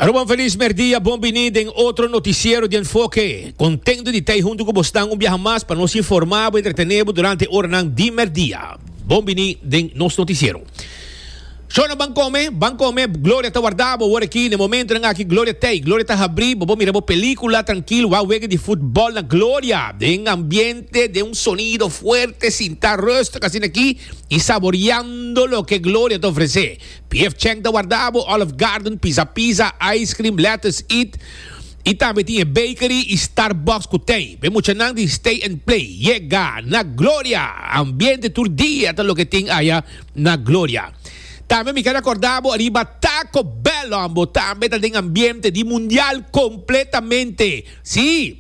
Aruba un feliz merdia, bon bini den otro noticiero di enfoke. Contento di tai hunto cu bos nan un biaha mas pa nos informa bo y entretene bo durante oranan di merdia. Bon bini den nos noticiero. Shona ban come, ban come, gloria ta warda bo awor aki, n'e momentonan aki gloria t'ey, gloria ta habri, bo bo mira bo pelicula trankil, wak wega di futbol na gloria, den ambiente, den un sonido fuerte, sinta rustig asina aki y saboriando loke gloria ta ofrece. Pf check ta warda bo Olive Garden, Pizza Pizza, Ice Cream, Lettuce Eat y tambe tin e Bakery y Starbucks cu tey. Be muchanan di Stay and Play yega na Gloria. Ambiente tur dia ta loke tin aya na Gloria. Tambe mi keda corda bo riba Taco Bell, Ombo tambe ta den ambiente di Mundial completamente. Si!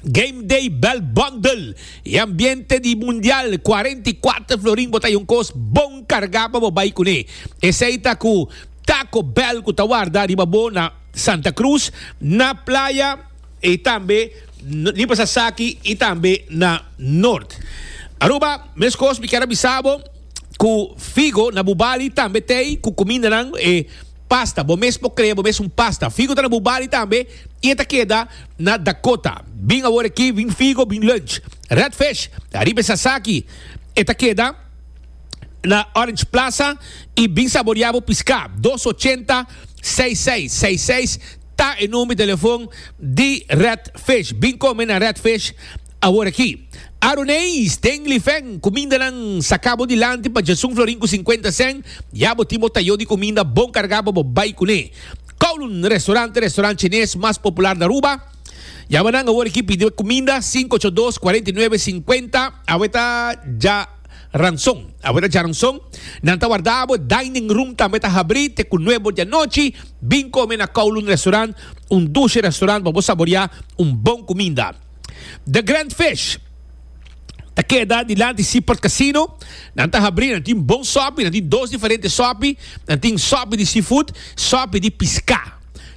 Game Day Bell Bundle y ambiente di Mundial 44 florin bo ta yon kos bon carga pa bo bay cune. Esey ta cu Taco Bell cu ta warda riba bo na Santa Cruz, na Playa y tambe ni pa Sasaki y tambe na Noord. Aruba, meskos mi kier a bisa bo cu Figo na Bubali tambe tey cu cumindanan e Pasta, bo mes por crea bo mes un pasta. Figo ta na bo body tambe y e ta keda na Dakota. Bin awor aki, bin figo, bin lunch. Red fish, ariba e sasaki, e ta keda na Orange Plaza y bin saborea bo pisca. Dos ochenta, seis seis seis seis ta e number di telefon di Red fish. Bin come na Red fish. Awor aki, Aaron Hayes den Lifen, Kuminda nan saka bo dilanti pa Jason Florin ku sinkuenta sèn, ya bo tin bo tayó di kuminda bon kargá pa bo bai kuné. Kowloon, Restorant e restorant chinés mas popular na Aruba. Yama nan awor aki pidi kuminda, sinku ocho dos, kuarenta i nuebe, sinkuenta. Awe ta dja ranson. Awe ta dja ranson. Nan ta wardá bo, dining room tambe ta habrí te ku nuebe or di anochi. Bin kome na Kowloon Restorant, un dushe restorant pa bo saboreá un bon kuminda. The Grand Fish ta keda dilanti Seaport Casino. Nan ta habri, nan tin bon sopi, nan tin dos diferente sopi. Nan tin sopi di seafood, sopi di piská.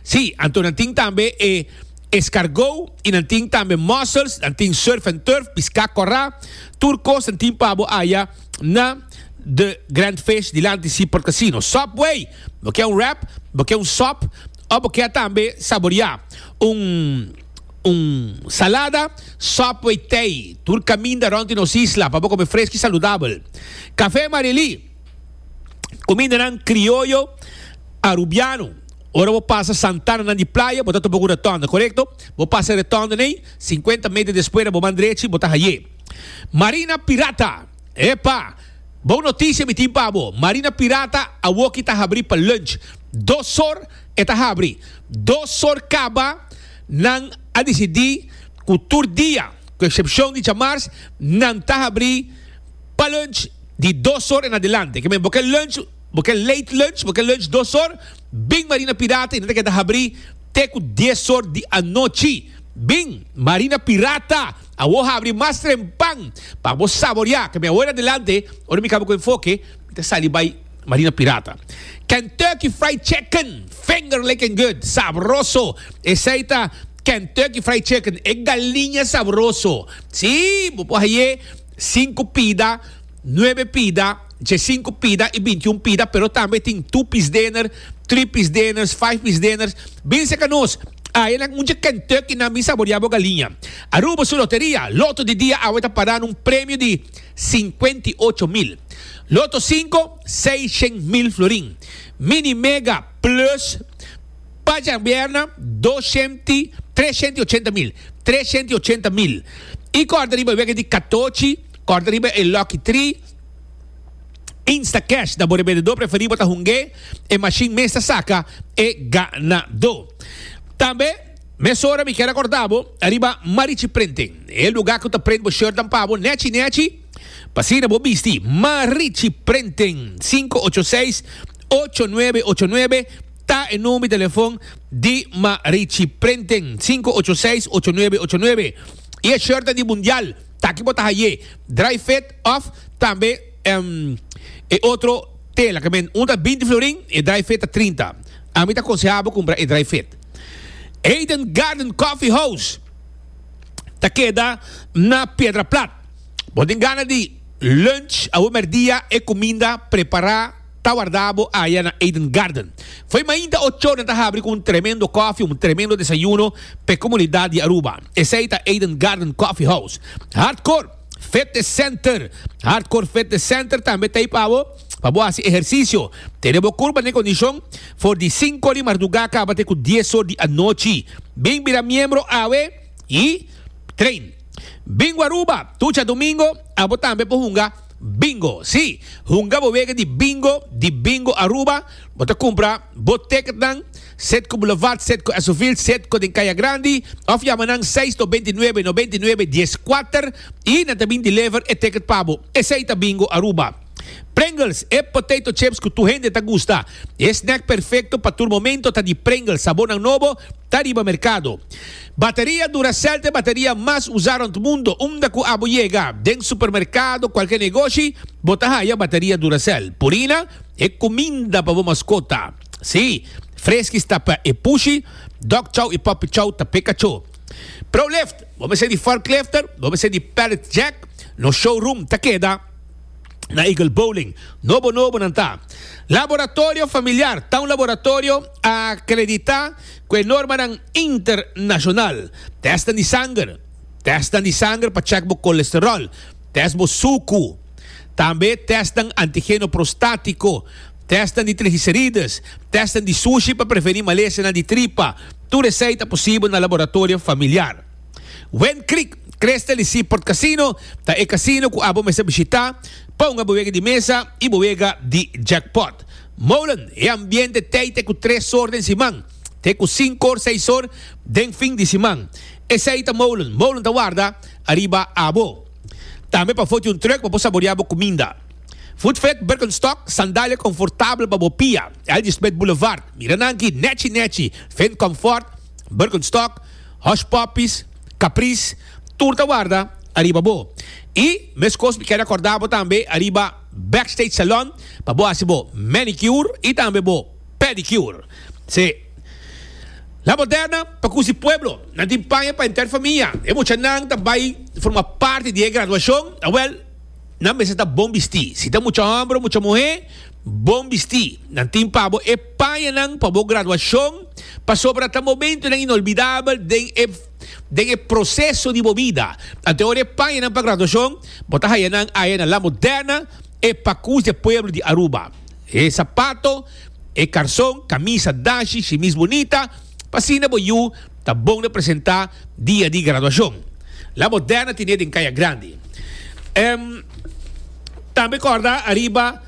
Sí, anto nan tin tambe e eskargó i nan tin tambe mussels, nan tin surf and turf, piská kòrá. Tur kos nan tin pa bo aya na The Grand Fish dilanti Seaport Casino. Subway, bo ke un wrap, bo ke un sòp òf bo ke tambe saboreá un. un salada, Subway Thai, tur caminda rond di nos isla pa bo come fresco y saludabel. Café Marily, cumindanan crioyo Arubiano. Ora bo pasa santananan di playa, bo ta topa cu retonda, corecto? Bo pasa e retonda n'ey, cincuenta meter despuera bo man drechi, bo ta haye Marina Pirata. Epa! Bon noticia mi tin pa bo, Marina Pirata awoki ta habri pa lunch, dos sor. E ta habri dos sor kaba. Nan a disidí ku tur dia, ku eksepshon di djamars, nan ta habri pa lunch di dos sor en adelante. Ke men bo ke lunch, bo ke late lunch, bo ke lunch dos sor, bing Marina Pirata i nan ta keda habri te ku dies sor di anochi. Bing Marina Pirata, awor habri mas trempan pa bo saboreá. Ke men awor en adelante, ora mi kaba ku enfoke, mi ta sali bai. Marina Pirata. Kentucky Fried Chicken, finger licking good, sabroso. Esei ta Kentucky Fried Chicken, e galiña sabroso. Sí, bo por haye sinku pida, nuebe pida, djesinku pida i bintiun pida, pero tambe tin two piece dinner, three piece dinners, five piece dinners. Bin serka nos, ayenan un dje Kentucky nan, bin saboreá bo galiña. Aruba su loteria, Lotto di dia awe ta pará na un premio di. Sinkuenta i ocho mil. Loto sinku, seishen mil florin. Mini Mega Plus pa djabierna, doshent i treshent i ochenta mil. Treshent i ochenta mil. I kòrda riba e wega di katochi, kòrda riba e Lucky Three, Instacash ta bo rebendedó preferí bo ta hung'é, e mashin mes ta saka e ganadó. Tambe. Mesora mi ke rekorda bo ariba Marichi Printing, e luga ku ta print bo shirtnan pa bo nechi nechi pa asina bo bisti. Marichi Printing, sinku ocho seis, ocho nuebe ocho nuebe ta e number di telefon di Marichi Printing, sinku ocho seis, ocho nuebe ocho nuebe. I e shirtnan di Mundial ta aki bo ta haye dry fit òf tambe e otro tela ke men. Un ta binti florin, e dry fit ta trinta. Ami ta konseha bo kumpra e dry fit. Eden Garden Coffee House ta keda na Piedra Plat. Bo tin gana di lunch awe merdia e kuminda prepará ta wardá bo aya na Eden Garden. Fo'i mainta ochor nan ta habri ku un tremendo kofi, un tremendo desayuno p'e komunidat di Aruba. Esei ta Eden Garden Coffee House. Hardcore Fitness Center Hardcore Fitness Center tambe ta ei pa bo. Pa bo hasi ehersisio, tene bo kurpa den kondishon for di sinku di mardugá kaba te ku dies or di anochi. Bin bira miembro awe i train. Bin ku Aruba tucha domingo, abo tambe por hunga Bingo. Sí, hunga bo wega di Bingo di Bingo Aruba. Bo ta kumpra bo teketnan sed ku Boulevard, sed ku Esovil, sed ku den Kaya Grandi òf yama nan seis to bintinuebe, no bintinuebe, dies kuater i nan ta bin deliver e teket pa bo. Esei ta Bingo Aruba. Pringles, e potato chips cu tur hende ta gusta. E snack perfecto pa tur momento ta di Pringles, sabornan nobo ta riba mercado. Bateria Duracell ta e bateria mas usa rond mundo, unda cu abo yega den supermercado, cualkier negoshi, bo ta haya bateria Duracell. Purina, e cuminda pa bo mascota. Sí, Friskies ta pa e pushi, Dog Chow y Puppy Chow ta p'e cacho. Prolift, bo mester di forklifter, bo mester di pallet jack, nos showroom ta keda. na Eagle Bowling. Nobo nobo nan ta. Laboratorio familiar ta un laboratorio akreditá ku e normanan internashonal. Tèstnan di sanger, tèstnan di sanger pa chèk bo kolesteròl, tèst bo suku, tambe tèstnan antigeno prostátiko, tèstnan di trigiserides, tèstnan di sushi pa prevení malesenan di tripa, tur esei ta posibel na laboratorio familiar. Wen Creek Crystal y Seaport Casino ta e casino cu abo mester bishita, ponga bo wega di mesa y bo wega di jackpot. Molen, e ambiente tey te cu tres or den siman, te cu cinco or, seis or den fin di siman. Esey ta molen, molen ta warda ariba abo. Tambe pa foti un truck pa bo saborea bo cuminda. Food Fed Birkenstock, sandalia confortabel pa bo pia, Algie Smith Boulevard, mira nan aki, Nechi Nechi, Fed Comfort, Birkenstock, Hush Puppies, Caprice, tur ta warda ariba bo. Y meskos mi kere acorda bo tambe ariba Backstage Salon pa bo haci bo manicure y tambe bo pedicure. Se La Moderna pa Cusi Pueblo nan tin paña pa henter famia. E muchanan ta bay forma parti di e graduacion, awel, nan mester ta bon bisti. Si ta mucha homber o mucha muher. Bon bistí. Nan tin pa bo e pañanan pa bo graduashon pasobra ta momentunan inolbidabel den e den e proseso di bo bida. Anto ora e pañanan pa graduashon bo ta haya nan aya na La Moderna, e pakus di e pueblo di Aruba. E sapato, e karson, kamisa, dashi, shimis bunita, pa asina bo yu ta bon na presentá dia di graduashon. La Moderna ten'é den Kaya Grandi. Tambe kòrda ariba.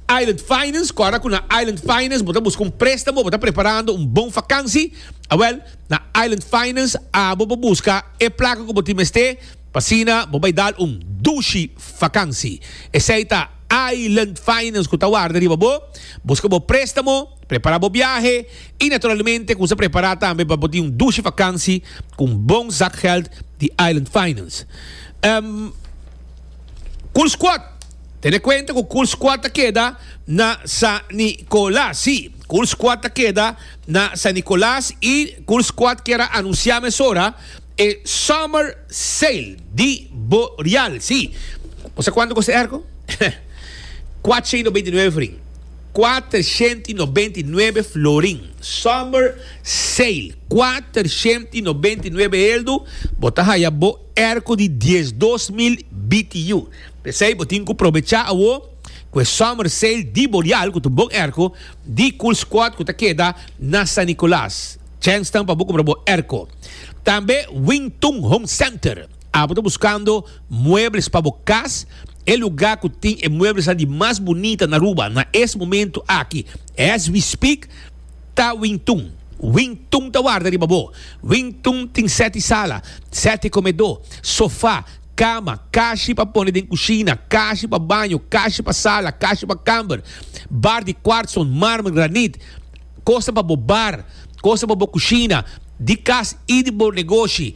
Island Finance, Kòrda ku na Island Finance bo ta buska un préstamo, bo ta preparando un bon fakansi? Awèl, na Island Finance abo pa buska e plaka ku bo tin mester pa asina bo bai dal un dushi fakansi. Esei ta Island Finance ku ta warda riba bo, buska bo préstamo, prepará bo biahe i naturalmente kuminsá prepará tambe pa bo tin un dushi fakansi ku un bon zak gèld di Island Finance. Cool Squad. Tene cuenta cu Cool Squad ta keda na San Nicolas. Sí, Cool Squad ta keda na San Nicolas y Cool Squad kier a anuncia mesora e Summer Sale di Boreal. Sí, bo sa cuanto costa e airco? Cuatshei no beinti nuebe florin. Cuatershenti no beinti nuebe florin. Summer Sale. Cuatershenti no beinti nuebe heldu. Bo ta haya bo. Er cu di dies dos mil BTU. P'esey bo tin cu probecha awo cu e Summer Sale di Boreal cu ta un bon erco di Cool Squad cu ta keda na San Nicolas. Chance tan pa bo cumpra bo erco. Tambe Wing Tun Home Center. Abo ta buscando muebles pa bo cas? E lugar cu tin e muebles nan di mas bunita n'Aruba na es momento aki, as we speak, Ta Wing Tun. Wing Tun ta warda riba bo. Wing Tun tin sete sala, sete komedó, sofá, kama, kashi pa pone den kushina, kashi pa baño, kashi pa sala, kashi pa kamber, bar di kwartson, marmer, granit, kosnan pa bo bar, kosnan pa bo kushina di kas i di bo negoshi,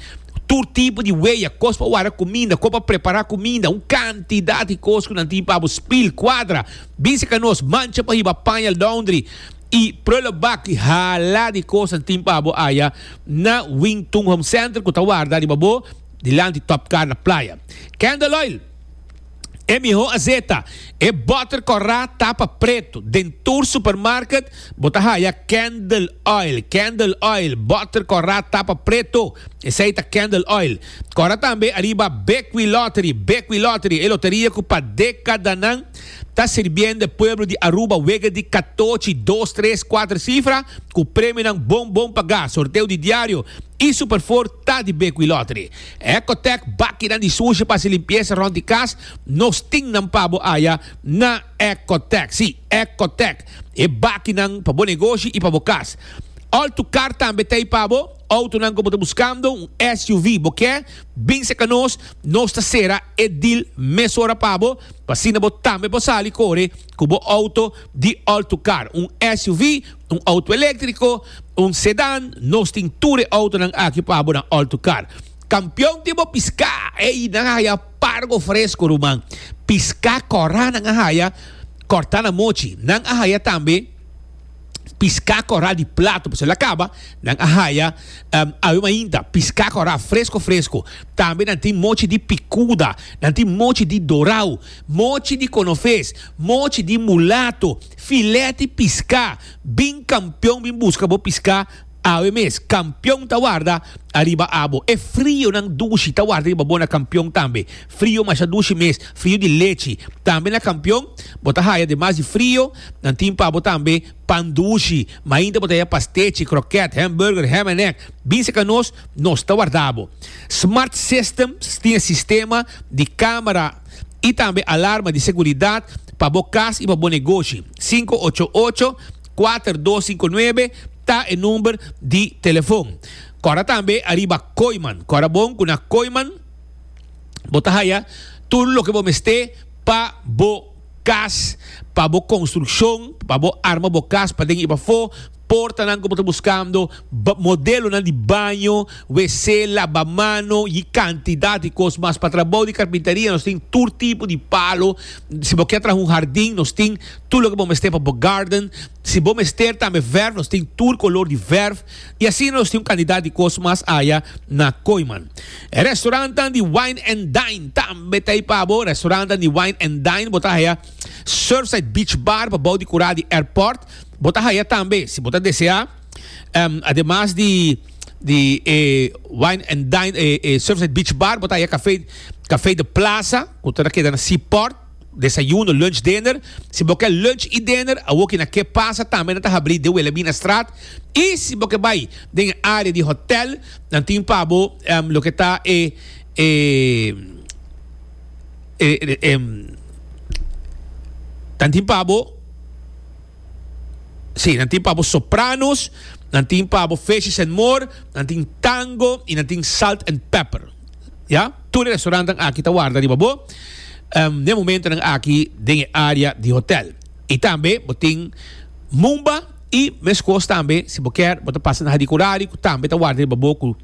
tur tipo di weya, kos pa warda kuminda, kos pa prepará kuminda, un kantidat di kos ku nan tin pa bo, spil, kwadra, bisa ka nos, mancha pa hiba, paña, laundry. I prula baki hala di kosan tin pa bo aya na Wing Tung Home Center ku ta warda riba bo dilanti Top Car na Playa. Candle Oil, e miho azeta, e botter kòrá tapa pretu, den tur supermarket bo ta haya Candle Oil, Candle Oil, botter kòrá tapa pretu, esei ta Candle Oil. Kòrá tambe ariba Bekwee Lottery, Bekwee Lottery, e loteria ku pa dekadanan Ta sirbiendo e pueblo di Aruba wega di katochi, dos, tres, kuater sifra ku premionan bon bon pagá, sorteo di diario i super for ta di Bequi Lottery. Ecotec bakinan di sushi pa hasi limpiesa rond di kas, nos tin nan pa bo aya na Ecotec. Sí, Ecotec, e bakinan pa bo negoshi i pa bo kas. Altucar tambe ta ei pa bo. Autonan ku bo ta buskando un SUV bo ke, bin seka nos, nos ta sera e dil mesora pa bo, pa asina bo tambe por sali kore ku bo auto di Altucar, un SUV, un auto eléktriko, un sedan, nos tin tur e autonan aki pa bo na Altucar. Kampion tin bo piská, ey nan a haya pargo fresko ruman, piská kòrá nan a haya, kòrtá na mochi, nan a haya tambe. piská kòrá di plato pasobra a kaba, nan a haya awe mainta piská kòrá fresko fresko. Tambe nan tin mochi di pikuda, nan tin mochi di dorau, mochi di konofes, mochi di mulato, filèt di piská. Bin kampion bin buska bo piská. Awe mes, kampion ta warda ariba abo. E frionan dushi ta warda riba bo na kampion tambe. Frio masha dushi mes, frio di lechi. Tambe na kampion bo ta haya demas di frio, nan tin pa bo tambe pan dushi. Mainta bo ta haya pastechi, kroket, hamburger, ham en ek. Bin seka nos, nos ta warda bo. Smart Systems tin e sistema di kamera i tambe alarma di seguridat pa bo kas i pa bo negoshi. Sinku ocho ocho, kuater dos sinku nuebe. ta e number di telefon. Kora tambe ariba Koiman. Kora bon ku na Koiman bo ta haya tur loke bo mester pa bo kas, pa bo konstrukshon, pa bo arma bo kas pa den i pafó, portanan ku bo ta buskando, modelonan di baño, WC, labamano i e kantidat di kos mas pa trabou di karpintaria nos tin tur tipo di palo. Si bo ke traha un hardin nos tin tur loke bo mester pa bo garden. Si bo mester tambe verf nos tin tur color di verf y asina nos tin un cantidad di cos mas aya na Kooiman. E restaurantan di wine and dine tambe ta ey pa bo. Restaurantan di wine and dine bo ta haya Surfside Beach Bar pa bou di cura di airport. Bo ta haya tambe si bo ta desea ademas di di e wine and dine e Surfside Beach Bar bo ta haya cafe cafe de plaza cu ta na keda na Seaport. Desayuno, lunch, dinner. Si bo ke lunch i dinner awoki na ke pasa tambe nan ta habri de wele bina straat i si bo ke bai den e área di hotèl nan tin pa bo loke ta e nan tin pa bo si nan tin pa bo sopranos nan tin pa bo fishes and more nan tin tango i nan tin salt and pepper. Ya, tur e restaurantenan aki ta warda riba bo den e momentonan aki den e area di hotel. I tambe bo tin Mumba i meskos tambe si bo kier bo ta pasa na Hadi Kurari ku tambe ta warda riba bo ku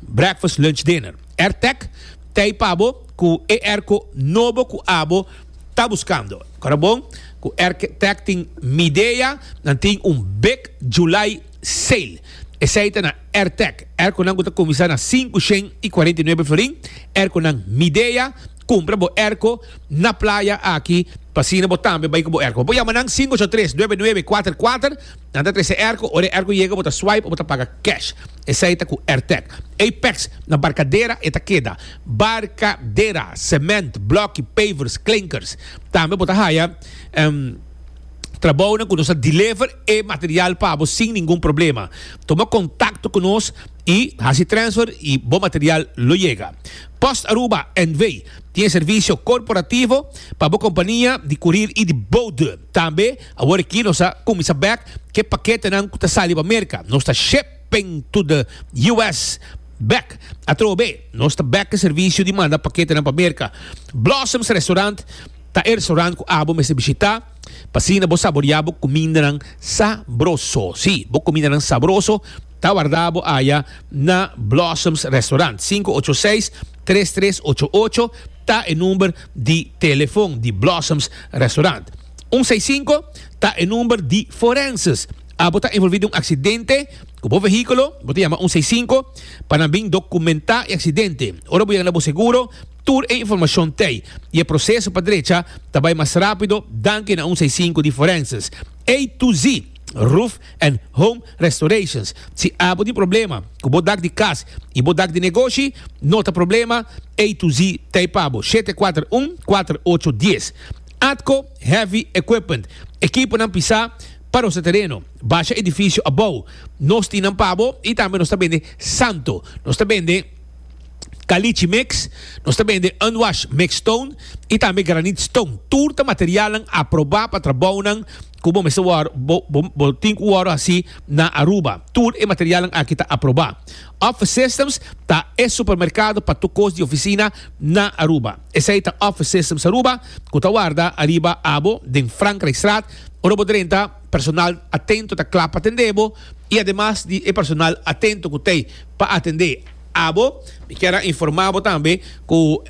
breakfast, lunch, dinner. Airtec ta ei pa bo ku e airco nobo ku abo ta buskando. Kora bon ku Airtec tin Midea, nan tin un big July. Sail. Esei ta na Airtec, er cu nan cu ta cuminsa na sinku shen y cuarenta y nuebe florin, er cu nan Midea, cumpra bo erco na playa aki pa asina bo tambe bay cu bo erco. Bo por yama nan sinku ocho tres, nuebe nuebe, cuater cuater, nan ta trece erco, ora e erco yega bo ta swipe o bo ta paga cash. Esei ta cu Airtec. Apex, na Barcadera e ta keda. Barcadera, cement, bloki, pavers, klinkers. Tambe bo ta haya. trabounan ku nos a deliver e material pa bo sin ningun problema. Toma kontakto ku nos i hasi transfer i bo material lo yega. Post Aruba NV. tin e servisio korporativo pa bo kompania di kurir i di boude. Tambe awor aki nos a kuminsá bèk ke paketenan ku ta sali pa Merka. Nos ta shipping to the US. Bèk atrobe nos ta bèk e servisio di manda paketenan pa Merka. Blossoms Restaurant. Ta e restaurant cu abo mester bishita pa asina bo saborea bo cumindanan sabroso. Si, bo cumindanan sabroso ta wardabo aya na Blossoms Restaurant. Sinku ocho seis, tres tres ocho ocho ta e number di telefon di Blossoms Restaurant. Un seis sinku ta e number di forenses. Abo ta envolvi den un accidente cu bo vehiculo, bo ta yama un seis sinku pa nan bin documenta e accidente. Ora bo yega na bo seguro, Tur e informashon t'ei, i e proseso pa drecha ta bai mas rápido danki na un seisinku di forenses A to Z Roof and Home Restorations. Si abo tin problema ku bo dak di kas i bo dak di negoshi, no ta problema, A to Z ta ei pa bo, shete kuater un kuater ocho dies. Atco Heavy Equipment, ekiponan pisá pa nos ta tereno, basha edifisio abou. Nos tin nan pa bo i tambe nos ta bende santo. Nos ta bende. Caliche Mix, nos ta bende Unwash Mix Stone y tambe Granite Stone. Tur ta materialnan aproba pa trabounan cu bo mester wor bo tin cu wor haci na Aruba. Tur e materialnan aki ta aproba. Office Systems ta e supermercado pa tur cos di oficina na Aruba. Esey ta Office Systems Aruba cu ta warda ariba abo den Frankrijkstraat ora bo drenta Personal atento ta kla pa atendé bo i ademas di e personal atento ku t'ei pa atendé abo, mi kier a informá bo tambe ku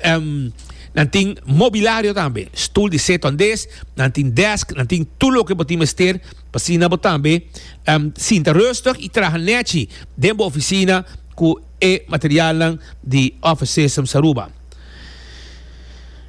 nan tin mobilario tambe, stul di setu andes, nan tin desk, nan tin tur loke bo tin mester pa asina bo tambe sinta rustig i traha nèchi den bo ofisina ku e materialnan di Office Systems Aruba.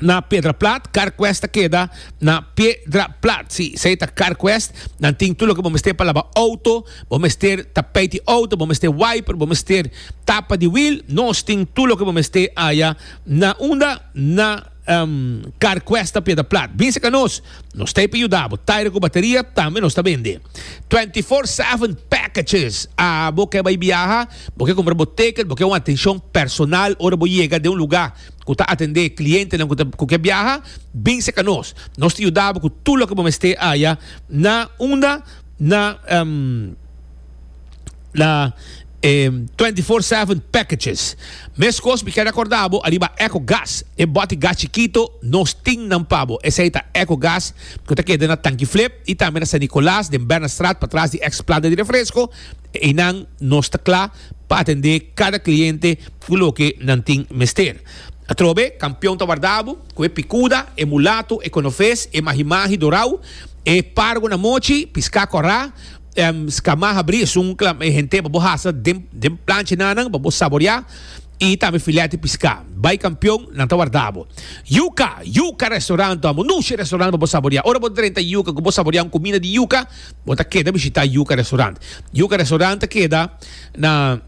na Piedraplat, Carquest ta keda na Piedraplat. Si, sei ta Carquest, nan tin tu loke bo mester pa laba auto, bo mester tapijt di auto, bo mester wiper, bo mester tapa di wiel, nos tin tu loke bo mester aya na unda? Na um Carquest na Piedraplat. Binse ka nos, nos ta hiper yuda bo. Tire ku bateria tambe nos ta bende. Twenty four seven packages, a bo ke bai biaha, bo ke kumpra bo ticket, bo ke un atenshon personal ora bo yega den un luga. ku ta atendé klientenan ku ke biaha, bin serka nos. Nos ta yuda bo ku tur loke bo mester haya na unda na na e twenty four seven packages. Meskos mi kere akorda bo ariba Echo Gas, e boti gas chikito, nos tin nan pa bo. Esei ta Echo Gas ku ta keda na Tanki Flip i tambe na San Nicolas den Bernardstraat patras di eks planta di refresko. Einan nos ta kla. pa atendé kada kliente ku loke nan tin mester. Atrobe, kampion ta warda bo, ku e pikuda, e mulatu, e konofes, e mahimahi dorau, e pargo na mochi, piská kòrá, èm, skamá habrí, esun kla e hente pa bo hasa den den plancha nanan pa bo saboriá, i tambe filèt di piská. Bai kampion, nan ta warda bo. Yuka! Yuka Restaurant Amo Nushi Restaurant pa bo saboriá. Ora bo drenta yuka ku bo saboriá un kuminda di yuka, Bo ta keda bishitá Yuca Restaurant. Yuca Restaurant ta keda na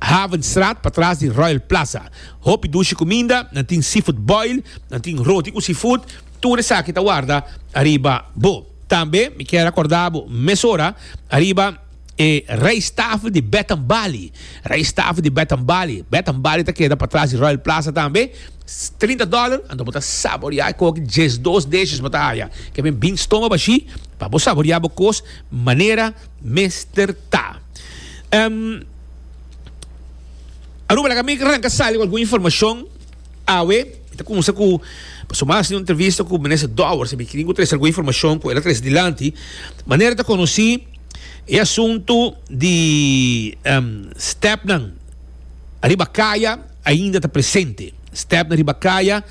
Havenstraat patras di Royal Plaza. Hopi dushi kuminda, nan tin seafood boil, nan tin roti ku seafood, tur esaki ta warda ariba bo. Tambe mi kier a kòrda bo mesora ariba e rijsttafel di Bed and Bali. Rijsttafel di Bed and Bali. Bed and Bali ta keda patras di Royal Plaza tambe. Trinta dòler anto bo ta saboreá e koki djesdos deshes bo ta haya. Ke men bin stoma bashí. Pa bo saborea bo kos manera mester ta. Em, Aruba, laga mi ranka sali ku algun informashon awe. Mi ta kumsa ku paso mas di un entrevista ku Minister Dowers, mi kiri ku trese algun informashon ku el a trese dilanti. Manera ta konosí e asuntu di em, stepnan ariba kaya ainda ta presente. Stepnan riba kaya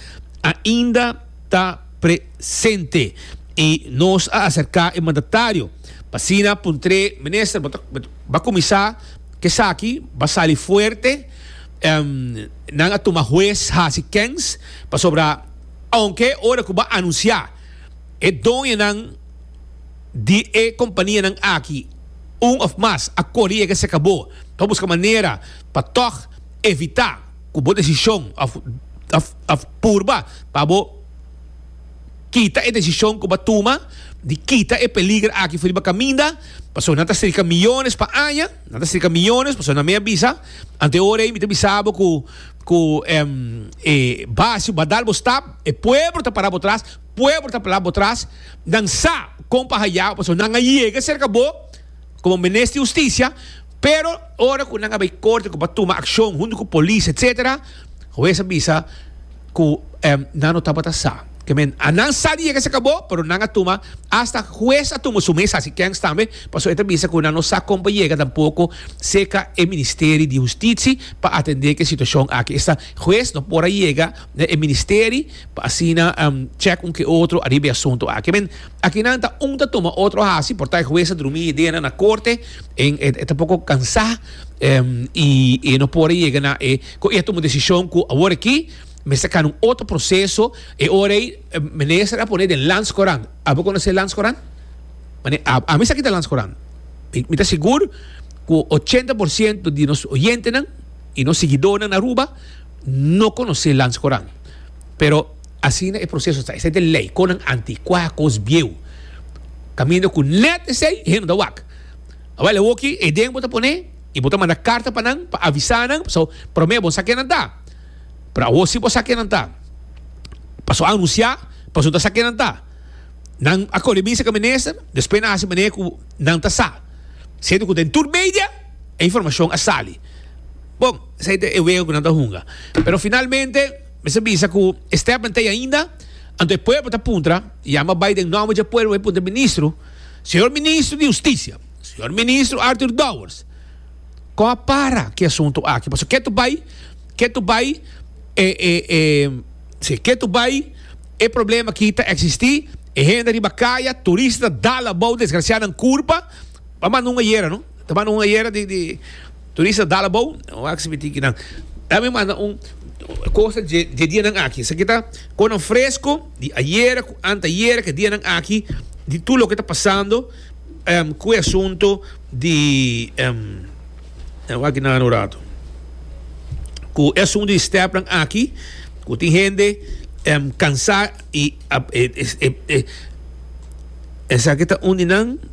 ainda. ta presente y nos a acerca e mandatario pa asina puntre minister bo ta bo a cuminsa cu esaki bo a sali fuerte nan a tuma hues haci kens pasobra aunke ora cu bo a anuncia e doñonan di e companianan aki un of mas a cori yega cerca bo pa busca manera pa tog evita. ku bo desishon òf òf purba pa bo kita e desishon ku bo a tuma di kita e peliger aki for riba kaminda pasobra nan ta serka miyones pa aña nan ta serka miyones pasobra nan a mi a bisa ante ora ei mi ta bisa bo ku ku e base bo a dal bo stap e pueblo ta para bo tras pueblo ta para bo tras nan sa kon pa haya bo pasobra nan a yega serka bo. Como Minister di Husticia, pero ora cu nan a bay corte cu bo a tuma accion hunto cu polis etcetera, huez a bisa cu nan no tabata sa. Ke men, a nan sa di yega saka bo, pero nan a tuma, hasta huez a tuma su mes haci kens tambe, pasobra e ta bisa cu nan no sa con pa yega tampoco cerca e Ministeri di Hustitsi pa atende ke situacion aki. Esta huez no por a yega na e ministeri pa asina check un ke otro ariba e asunto aki. Akinan ta un ta tuma otro hasi por ta e hues a drumi ideanan na korte en e ta poko kansá i e no por a yega na e ku e a tuma desishon ku awor aki mester kana un otro proseso e ora ei minister a pone den Landscourant a bo konosé Landscourant? Mane ami sa ki ta Landscourant i mi ta sigur ku ochenta por siento di nos oyentenan i nos siguidónan Aruba no konosé Landscourant pero Asina e proseso ta. Esei ta e lei, konan antikuá, kos bieu. Kaminda ku nèt esei hende ta wak. Awor awoki e den bo ta pone i bo ta manda karta pa nan pa avisá nan, paso promé bo no sa ke nan ta. Pero awor si bo sa ke nan ta. Paso anunsiá, paso bo ta sa ke nan ta. Nan a kore bisa ku minister, despues nan a hasi manera ku nan ta sa. Siente ku den tur media e informashon a sali. Bon, esei ta e wega ku nan ta hunga. Pero finalmente. Mester bisa cu e step nan ta ei ainda. Anto e pueblo ta puntra, yama bai den nomber dje pueblo bai puntra e ministro, Señor Ministro di Husticia, Señor Ministro Arthur Dowers, con a para ki asunto aki? Pasobra ke ta bai, ke ta bai e, e, e, si, ke ta bai e problema aki ta existi, e hende riba kaya, turista ta dal abao desgraciado nan curpa, ta manda un ayera, no, ta manda un ayera di, di. Turista dal abou e wak si mi tin kinan ta mi manda un cosa dje dje dianan aki esaki ta conan fresco di ayera cu antayera ke dianan aki di tur loke ta pasando em cu e asunto di em e wak kinan ano rato cu e asunto di step nan aki cu tin hende em cansa y ap e e e esaki ta un di nan.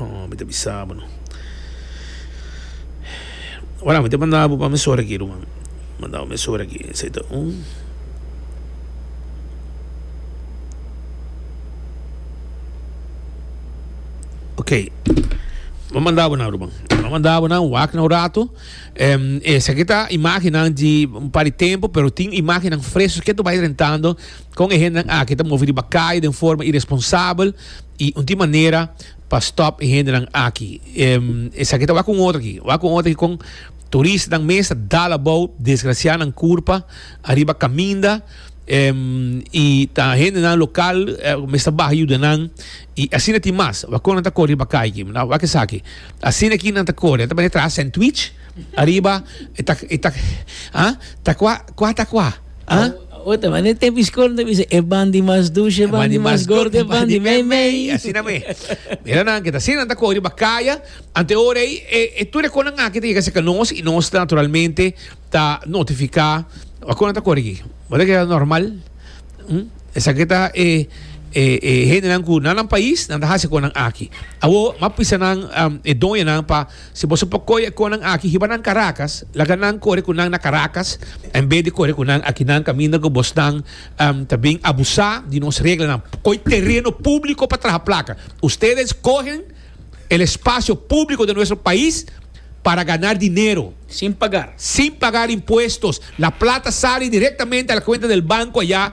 Oh, mi ta bisa bo no. Ora, mi ta manda bo pa mi sora aki, ruman. Manda bo mi sora aki. Esei ta un. Ok. Bo manda bo nan, ruman. Bo manda bo nan, wak na un rato. Em, esaki ta imagennan di un par di tempo, pero tin imagennan freso ke to bai rentando. Kon e hendenan aki ta movi riba kai den forma iresponsabel i un tin manera pa stòp e hendenan aki. Esaki ta wak un otro aki. Wak un otro aki kon turistanan mes ta dal abou desgrasianan kurpa ariba kaminda i ta hendenan lokal ku mes ta baha yuda nan. I asina tin mas. Wak kon nan ta kore riba kai aki. Wak esaki. Asina ki nan ta kore. Nan ta bini traha Sentwich. Ariba e ta e ta ha ta kua kua ta kua ha. Ota mane e tempo iskol no ta bisa e ban di mas dushi e ban di mas gordo e ban di meimei. Asina me mira nan ke ta asina nan ta kohe riba kaya ante ora ei e tur e konan aki ta yega serka nos i nos naturalmente ta notifika a kon nan ta kore aki bo ta keda normal esaki ta e e e hendenan ku na nan pais nan ta hasi e konan aki awor m'a pisa nan e doñonan pa Si boso por coe e conan aki hiba nan Caracas, laga nan core cu nan na Caracas en bes di core cu nan aki. Nan caminda cu bosnan ta bin abusa di nos reglanan. Coe tereno publico pa traha placa. Ustedes cohen el espacio publico den nuestro pais para ganar dinero. Sin pagar. Sin pagar impuestos. La plata sali directamente a la cuenta del banco aya.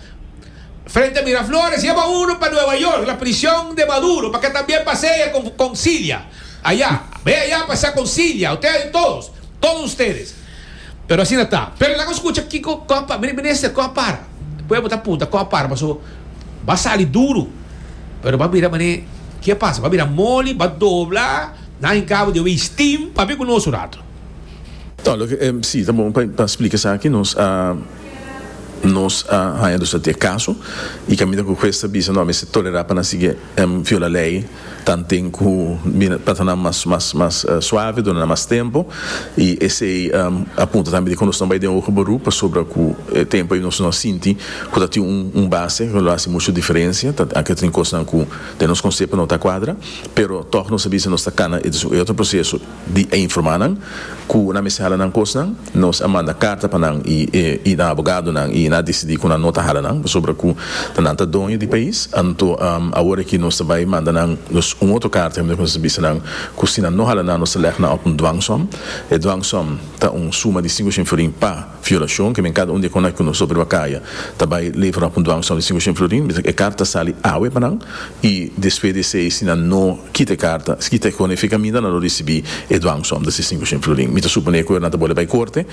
Frente a Miraflores yaba uno pa Nueva York, la prishon de Maduro, pa ke también pasea con Concilia aya. Bay aya pasea Concilia, usted hay todos, todos ustedes. Pero asina ta. Pero laga nos scucha kiko, kon a para, Minister, kon a para? Pueblo ta punta kon a para paso ba sali duro, pero ba mira mane ke a pasa, ba mira moli, ba dobla, nan hincabo di hui steam, papi ku nos un rato. Ta, lo ke, si, ta bon pa splica esaki nos. Nos a haña dus ati e kaso i kaminda ku hues ta bisa no a mester tolerá pa nan sigui em viola lei ta nten ku bira trata nan mas mas mas suave duna nan mas tempu i esei a punta tambe di ku nos no bai den oho barú pasobra ku e tempu ei nos no a sinti ku ta tin un base ku lo hasi mushu diferensia ta aki ta tin kosnan ku den nos konsepu no ta kuadra pero tòg nos a bisa nos ta kana e otro proseso di e informa nan ku nan mester hala nan kos nan, nos a manda karta pa nan i nan abogado nan i nan a disidi ku nan no ta hala nan pasobra ku ta nan ta doño di pais, anto awor aki nos ta bai manda nan nos un otro karta hende ku nos ta bisa nan ku si nan no hala nan nos ta lèg nan òf un dwangsom, e dwangsom ta un suma di sinku shinfurin pa. Violashon, ke men kada un di e konai ku nos obriba kaya ta bai leve ròk un dwang sòlid sin Hushen Florin, bisaki e karta ta sali awe pa nan i despues di esei si nan no kita e karta, si kita e konai fika aminda nan lo risibí e dwang sòm, ta si sin Hushen Florin. Mi ta suponé ku nan ta bole bai korte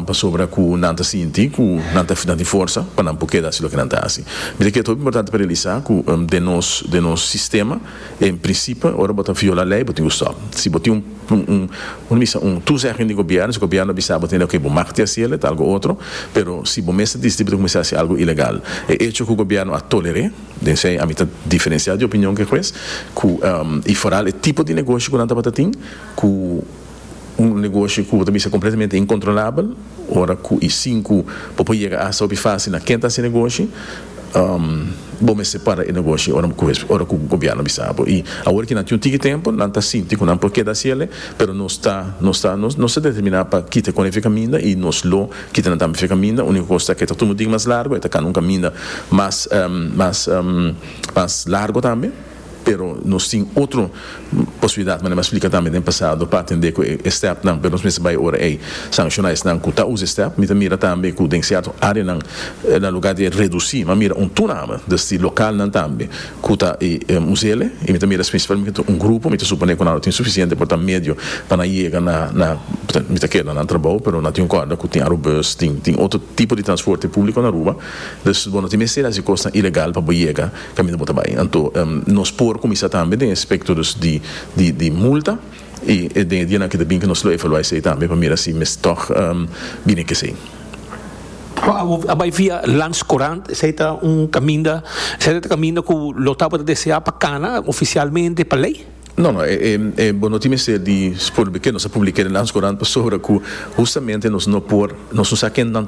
pasobra ku nan ta sinti ku nan ta tin forsa pa nan por keda hasi loke nan ta hasi. Mi ta kere ta hopi importante pa realisá ku den nos den nos sistema, En principe ora bo ta viola ley bo tin cu stop. Si bo tin un un bisa un toezegging di gobierno, si gobierno a bisa bo tin ok bo mag ti haci el, e ta algo otro, pero si bo mes a dici tin bo ta cuminsa haci algo ilegal. E hecho cu gobierno a toler'e, den esey ami ta diferencia di opinion cu e juez, cu y foral e tipo di negoshi cu nan tabata tin cu. Un negoshi ku ta bisa kompletamente inkontrolabel ora ku e sinku bo por yega asta hopi fásil na ken ta hasi negoshi, bo mester para e negoshi ora ku gobièrnu bisa bo. I awor ki nan tin un tiki tempu nan ta sinti ku nan por keda hasi el'e, pero nos ta nos ta nos ta determiná pa kita e konekta kaminda i nos lo kita nan tambe fe kaminda. Úniko kos ta ku e ta tuma un digi mas largu, e ta kana un kaminda mas mas largu tambe. Pero nos tin otro posibilidat, manera mi a splica tambe den pasado, pa atende cu e stepnan, pero nos mester bay ora ey sanciona esnan cu ta usa e step. Mi ta mira tambe cu den cierto areanan na lugar di e reduci, mi a mira un tunama desdi localnan tambe cu ta e musele y mi ta mira es principalmente un grupo, mi ta supone cu nan lo tin suficiente por ta medio pa nan yega na na mi ta keda nan trabou, pero nan tin un corda cu tin arobus, tin tin otro tipo di transporte publico na Aruba, dus bo no tin mester haci cosnan ilegal pa bo yega. Caminda bo ta bay. Anto nos por cuminsa tambe den e aspecto dus di multa y den e dianan que ta bin nos lo evaluá esey tambe pa mira si mes tog bini e kesey. Bo a bay via Lans Courant, esey ta un caminda, esey ta e caminda cu lo tabata deseá pa cana oficialmente pa ley? No, no, bo no tin mester di spor bekend, nos a public'é den Lans Courant pasobra cu hustamente nos no por, nos no sa ken nan.